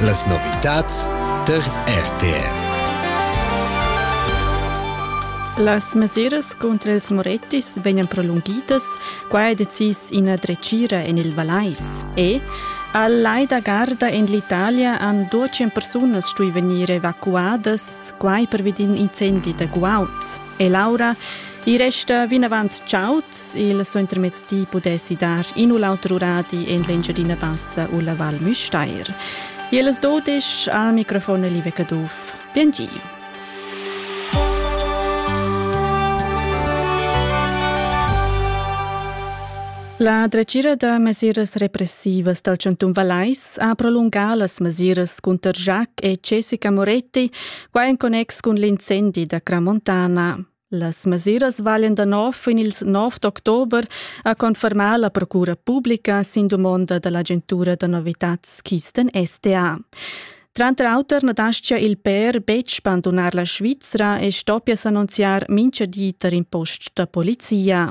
Las novitads tar RTR. Las mesiras contra ils Morettis vegnan prolunghidas, quai è decis ina dretgira en il Valais. E al lai da Garda en l'Italia han 12 persunas stuì vegnir evacuadas, quai pervi d'in incendi da guaud. E Laura, i resta vinavant chaud, il suentermezdi pudessi dar in u l'auter uradi en l'Engiadina Bassa u la Val Müstair. Ils dodisch al microfon Live Caduff. Bien giu! La dretgira da mesiras repressivas dal Chantun Vallais s'ha prolungà las mesiras cunter Jacques e Jessica Moretti, quai en connex cun l'incendi da Cramontana. Las mesiras valen da nov fin ils 9 d'october, ha confermà la procura pubblica sin dumonda da l'agentura da novitads Kisten STA. Tranter auter na daschia il per betg bandunar la Svizra e stoppia s'annunziar mintga di tar in post da polizia.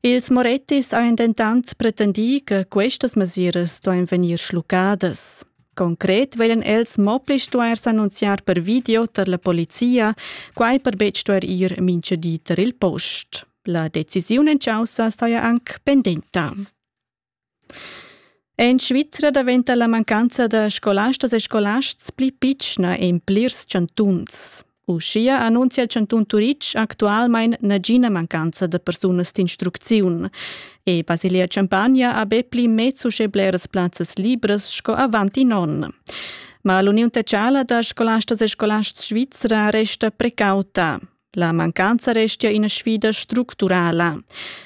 Ils Morettis han dentant pretendì che questas mesiras duain vegnir schluccadas. Concret veglan els mo pli stuair s'annunziar per video tar la polizia, quai per betg stuair ir mintga di tar il post. La decisiun en caussa staja anc pendenta. En Svizra daventa la mancanza da scolastas e scolasts pli pitschna en plirs chantuns. Uschia annunzia il chantun Turitg actualmain nagina mancanza da persunas d'instrucziun. E Basilea Champagna ha be pli mez uschè bleras plazzas libras sco avant in onn. Ma l'uniun tecciala da scolastas e scolasts svizra resta precauta. La mancanza restia ina sfida structurala.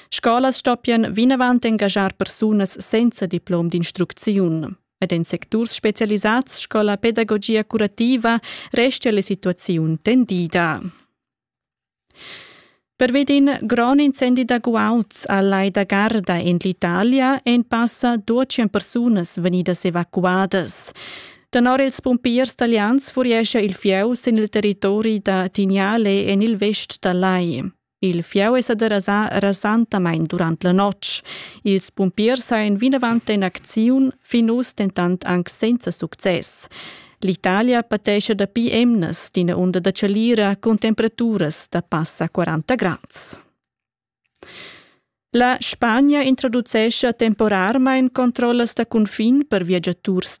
Scolas stoppian vinavant engaschar persunas senza diplom d'instrucziun. Ed en secturs specialisads sco la pedagogia curativa restia la situaziun tendida. Per vedin gron incendi da guauds a Lai da Garda en l'Italia en passa 200 persunas venidas evacuadas. Tenor ils pumpiers talians furiescha il fieu sin il territori da Tignale en il vest dal lai. Il fieu è sa derasà rasantamain durant la notg. Ils pumpiers hajan vinavant en acziun, fin uss dentant anc senza success. L'Italia patescha dapi emnas d'ina unda da chalira cun temperaturas da passa 40 grads. La Spagna introducescha temporarmain controllas da cunfin per viagiaturs